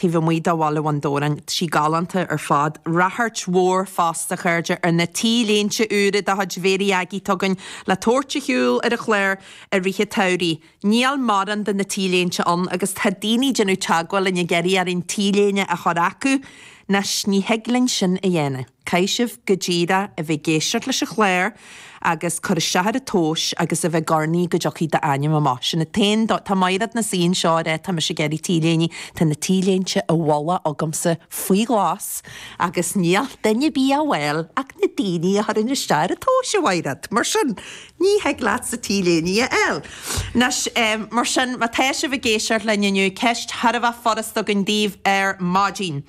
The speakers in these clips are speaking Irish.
taobh amuigh de Bhaile Bhun Dobhráin, sí galánta ar fad. Ráchairt mhór fosta, a chairde, ar na T-léinte úra de chuid Mary Aggie atá againn le tabhairt ar shiúl ar an chlár i rith an tsamhraidh. Níl mórán de na T-léinte ann agus tá daoine ag déanamh teagmháil linn ag iarraidh orainn T-léine a chur chucu anois. Ní thig linn sin a dhéanamh. caithfidh sibh go díreach a bheith ag éisteacht leis an chlár agus cur isteach ar an tomhas agus a bheith ag urnaí go dtiocfaidh d'ainm amach. Sin an t-aon dóigh. Tá Mairéad ina suí anseo ag rá tá mise ag iarraidh t-léine, tá na t-léinte i bhfolach agamsa faoi ghlas agus níl duine ar bith á bhfáil ach na daoine a chuireann isteach ar an tomhas, a Mhairéad. Mar sin, ní thig leatsa t-léine a fháil. Anois, mar sin, má tá sibh ag éisteacht linn inniu, ceist thar a bheith furasta againn daoibh ar maidin.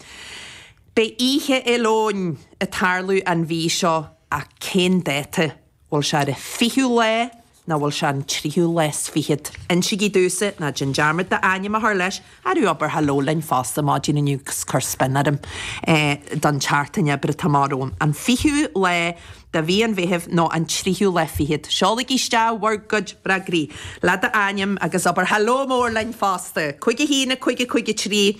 Beidh Oíche Fhéile Eoin ag tarlú an mhí seo ach cén dáta? Bhfuil sé ar an fichiú lá nó bhfuil sé ar an tríú lá is fichead? Insigí domhsa, ná déan dearmad d'ainm a chur leis, arú abair haló linn fosta ar maidin inniu 'gus cuir spion orm don tseachtain oibre atá amach romham. An fichiú lá de mhí an Mheithimh nó an tríú lá fichead? Seolaigí isteach bhur gcuid freagraí, le d'ainm agus abair haló mór linn fosta! Cúig, a haon, a cúig, a cúig, a trí.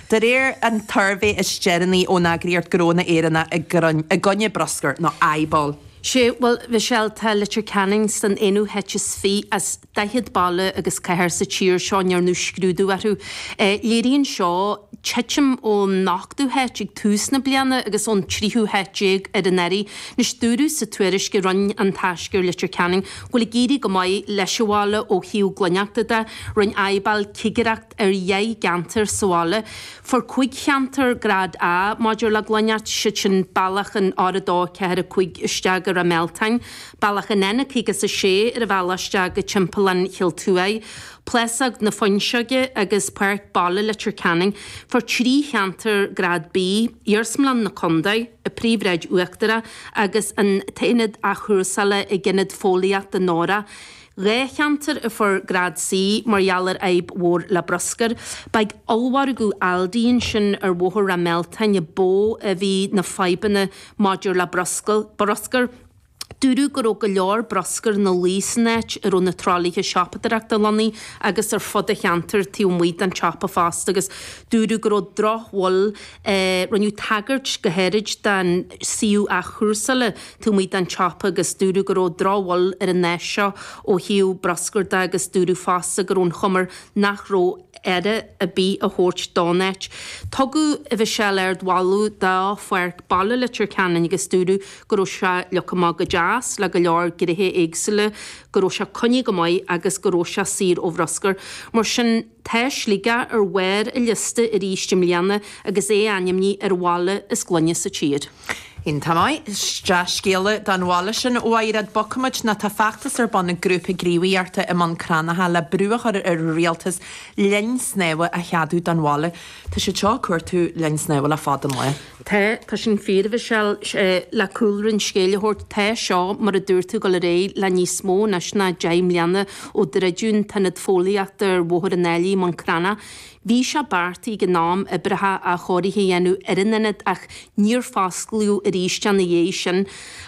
De réir an tsuirbhé is deireanaí ón eagraíocht Gnónna Éireannacha i gcoinne Bruscair nó IBAL. Sea, bhuel, a Mhichelle, tá Leitir Ceanainn san aonú háit is fiche as daichead baile agus cathair sa tír seo a ndearnadh scrúdú orthu. Léiríonn seo titim ón ochtú háit ag tús na bliana agus ón tríú háit déag anuraidh. Anois, dúradh sa tuairisc a rinne An Taisce ar Leitir Ceanainn go bhfuil ag éirí go maith leis an bhaile ó thaobh glaineachta de. Rinne IBAL cigireacht. ar dheich gceantar sa bhaile. Fuair cúig cheantar grád A maidir le glaineacht, siad sin Bealach an R, 2, 4, 5 isteach go Ráth Mealtáin, Bealach an N56 ar an bhealach isteach go Timpeallán Chill Tuáigh, Plásóg na Fuinseoige agus Páirc Baile Leitir Ceanainn. Fuair trí cheantar grád B, Iarsmalann na Condae, an Phríomhshráid Uachtarach agus an t-aonad athchúrsála ag Ionad Fóillíochta an Aura, Dhá cheantar a fuair grád C mar gheall ar fhadhb mhór le bruscar. Ba ag ollmhargadh Aldi ansin ar Bhóthar Ráth Mealtáin ba mhó a bhí na fadhbanna maidir le bruscar. Dúradh go raibh go leor bruscair ina luí san áit a raibh na tralaithe siopadóireachta lonnaithe agus ar fud an cheantair taobh amuigh den tsiopa fosta agus dúradh go raibh drochbhail Rinneadh tagairt go háirid don suíomh athchúrsála taobh amuigh den tsiopa agus dúradh go raibh drochbhail ar an áis seo ó thaobh bruscair de agus dúradh fosta go raibh an chuma nach raibh aire ar bith á thabhairt don áit. Tugadh a Mhichelle ardmholadh do Pháirc Baile Leitir Ceanainn agus dúradh go raibh sé leagtha amach go deas le go leor gnéithe éagsúla, go raibh sé coinnithe go maith agus go raibh sé saor ó bhruscar. Mar sin. Tá Sligeach ar bharr an liosta arís i mbliana agus é ainmnithe ar an bhaile is glaine sa tír. Iontach maith, is dea-scéala don bhaile sin, a Mhairéad, bogfaimid ná tá feachtas ar bun ag grúpa gníomhaíochta i mBun Cranncha le brú a chur ar an rialtas linn snámha a cheadú don bhaile. Tá siad seo ag cuartú linn snámha le fada an lá. Tá, tá sin fíor, a Mhichelle. Sé, le cúlra an scéil a thabhairt, tá seo, mar a dúirt tú, dul ar aghaidh le níos mó anois ná deich mbliana ó druideadh an t-ionad fóillíochta ar Bhóthar an Ailigh i mBun Cranncha. Bhí sé beartaithe ag an am oibreacha athchóirithe a dhéanamh ar an ionad ach níor fosclaíodh arís é ina dhiaidh sin.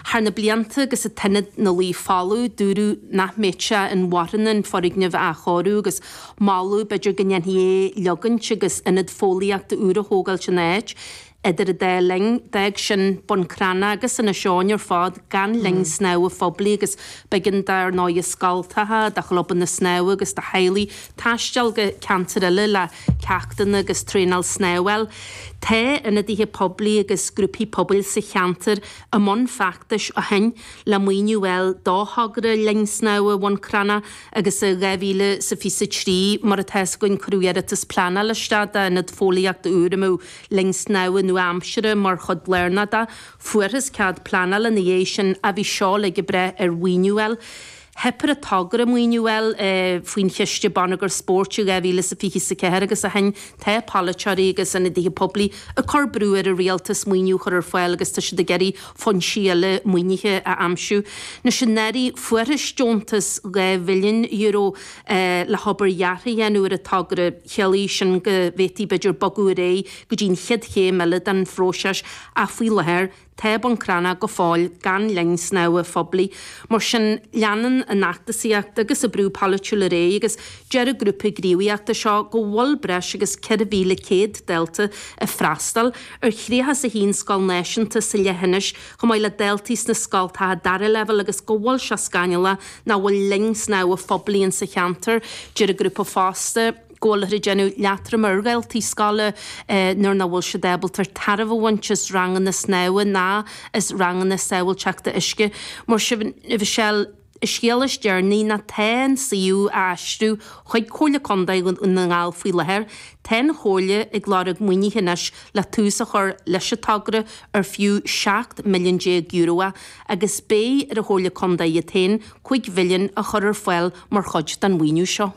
Thar na blianta agus an t-ionad ina luí folamh, dúradh nach mbeadh sé inmharthana an foirgneamh a athchóiriú agus, moladh, b'fhéidir go ndéanfaí é a leagaint agus ionad fóillíochta úr a thógáil san áit. Idir an dá linn, d'fhág sin Bun Cranncha agus Inis Eoghain ar fad gan linn snámha phoiblí agus b'éigean dar ndóigh do scoltacha, do chlubanna snámha agus do theaghlaigh taisteal go ceantair eile le ceachtanna agus traenáil snámha a fháil. Tá ionadaithe poiblí agus grúpaí pobail sa cheantar i mbun feachtais ó shin le maoiniú a fháil do thogra linn snámha Bhun Cranncha. agus i 2023 mar atá a fhios againn cuireadh iarratas pleanála isteach d'ionad fóillíochta úr a mbeadh linn snámha nua-aimseartha mar chuid lárnach de. Fuarthas cead pleanála ina dhiaidh sin ach bhí seo uilig ag brath ar mhaoiniú a fháil. Theip ar an togra maoiniú a fháil faoin Chiste Bonneagair Spóirt i 2024 agus ó shin tá polaiteoirí agus ionadaithe poiblí ag cur brú ar an rialtas maoiniú a chur ar fáil agus tá siad ag iarraidh foinsí eile maoinithe a aimsiú. Nuair sin d'éirigh, fuarthas deontas dhá mhilliún euro le hobair dheartha a dhéanamh ar an togra. Chiallaigh sin go bhféadfaí, b'fhéidir, bogadh ar aghaidh go dtí an chéad chéim eile den phróiseas ach faoi láthair, tá Bun Cranncha go fóill gan linn snámha phoiblí. Mar sin, leanann an fheachtasaíocht agus an brú polaitiúil ar aghaidh agus deir an grúpa gníomhaíochta seo go bhfuil breis agus 4,100 dalta ag freastal ar 31 scoil náisiúnta sa leithinis, chomh maith le daltaí sna scoltacha dara leibhéal agus go bhfuil sé scannalach nach bhfuil linn snámha phoiblí in sa cheantar. Deir an grúpa fosta go bhfuiltear ag déanamh leatroim ar dhaltaí scoile nuair nach bhfuil siad ábalta tairbhe a bhaint as ranganna snámha ná as ranganna sábháilteachta uisce. Mar sin, An scéal is deireanaí ná tá an suíomh á aistriú chuig Comhairle Contae Dhún na nGall faoi láthair, tá an Chomhairle ag lorg maoinithe anois le tús a chur leis an togra ar fiú €17 milliún euro agus beidh ar an Chomhairle Contae iad féin €5 mhilliún a chur ar fáil mar chuid den mhaoiniú seo.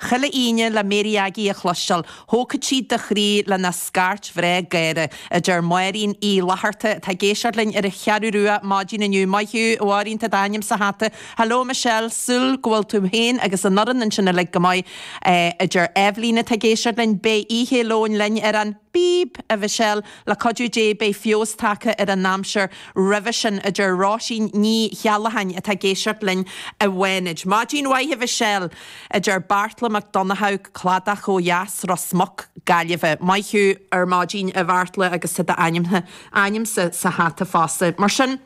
Chuile Aoine le Mary Aggie a chloisteáil, thógfadh siad do chroí lena scairt bhreá gháire, a deir Máirín Uí Fhlatharta, atá ag éisteacht linn ar an Cheathrú Rua maidin inniu. Maith thú, a Mháirín, tá d'ainm sa hata. Hello, Michelle, súil go bhfuil tú féin agus an fhoireann ansin uilig go maith, a deir Eibhlín, atá ag éisteacht linn. Beidh Oíche Fhéile Eoin linn ar an. B, a Mhichelle, le cuidiú Dé beidh feabhas tagtha ar an aimsir roimhe sin, a deir Róisín Ní Cheallacháin atá ag éisteacht linn i bhFánaid. Maidin mhaith, a Mhichelle! a deir Beartla Mac Donnchadha, Cladach ó Dheas, Ros Muc, Gaillimhe. Maith thú! Ar maidin, a Bheartla, agus tá d'ainmse sa hata fosta, mar sin!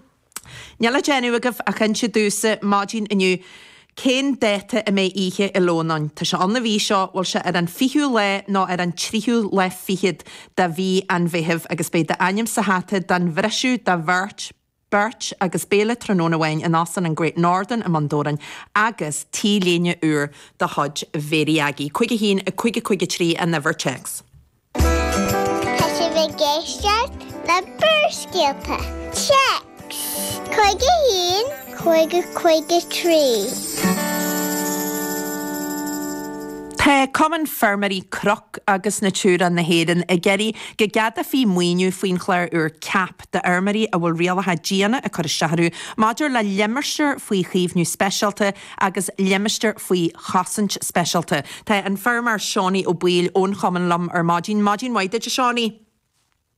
Níl le déanamh agaibh ach inse domhsa, maidin inniu, cén dáta a mbeidh Oíche Fhéile Eoin ann. Tá sé ann an mhí seo, bhfuil sé ar an fichiú lá nó ar an tríú lá fichead de mhí an Mheithimh agus beidh d'ainm sa hata don bhriseadh do bheirt, beirt agus béile tráthnóna amháin in Óstán an Great Northern i mBun Dobhráin agus T-léine úr de chuid Mhary Aggie. 51 553 an uimhir téacs. Tá sibh ag éisteacht le Barrscéalta, Téacs, 51, 5, 53. Tá Cumann Feirmeoirí Cnoc agus Natura na hÉireann ag iarraidh go gceadófaí maoiniú faoin chlár úr CAP d'fheirmeoirí a bhfuil rialacha diana ag cur isteach orthu maidir le limistéir faoi chaomhnú speisialta agus limistéar faoi chosaint speisialta. Tá an feirmeoir Seánie Ó Baoill ón chumann liom ar maidin. Maidin mhaith duit, a Seánie.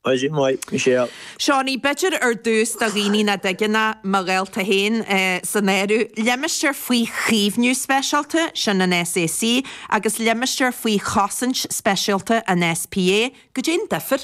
Maidin mhaith, Michelle. Seánie, b'fhéidir ar dtús do dhaoine nach dtuigeann, mo dhálta féin san áireamh, limistéar faoi chaomhnú speisialta, sin an SAC, agus limistéar faoi chosaint speisialta, an SPA, caidé an difear?